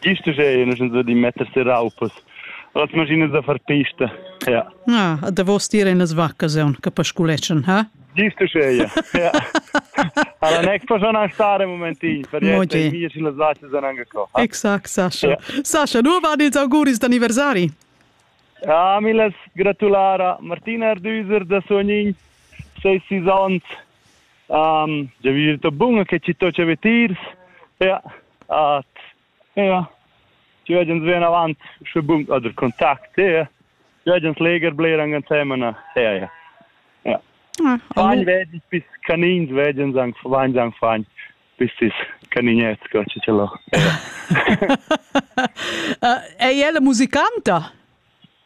Gist uschè nu sun di metter se raupas. Las maschinas da far pista, ja. Ah, a davos dir in las vaccas aun che pasculeschan, ha? Gist uschè, ja. ja. Allora neck po schon stare un momentin, per niente, i miei sin las vacce sono anche qua. Exakt, Sascha. Ja. Sascha, nu va dits auguris d'anniversari? Ah, mi las gratulara Martina Ardüser da Sognin, sei sis ans. Um, già vi detto bun che ci to c'è vetirs. Ja. At ja, die werden sehen avant sche bum oder Kontakt, ja. Die werden leger bleiben ansemen, ja, ja. Ja. Ah, fein werden bis Kanin werden sagen, fein sagen fein bis sis Kaninet, Gott, ce l'ho. È ella musicanta?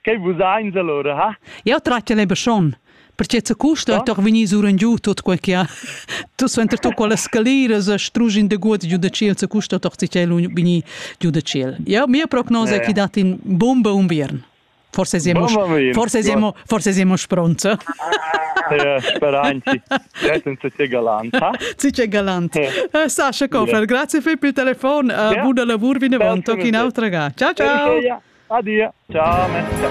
Che vus eins allora, ha? Jau tratg el e beschon. Perché ce custa oh? toch vegnir surengiu tut quel che ha tu suenter tu quelle scaliras e strugi in de gut giu de ciel ce custa toch ci chel vegnir giu de ciel. Ja mia prognosa è che dat in bomba unviern. Forse siamo forse siamo forse siamo pronti. Ja, speranti. Tge galanta. Tge galanta. Eh, Sascha Kofel, grazie per il telefon. Buona lavur vinavant, anche un'altra ga. Ciao, ciao. Adia. Ciao.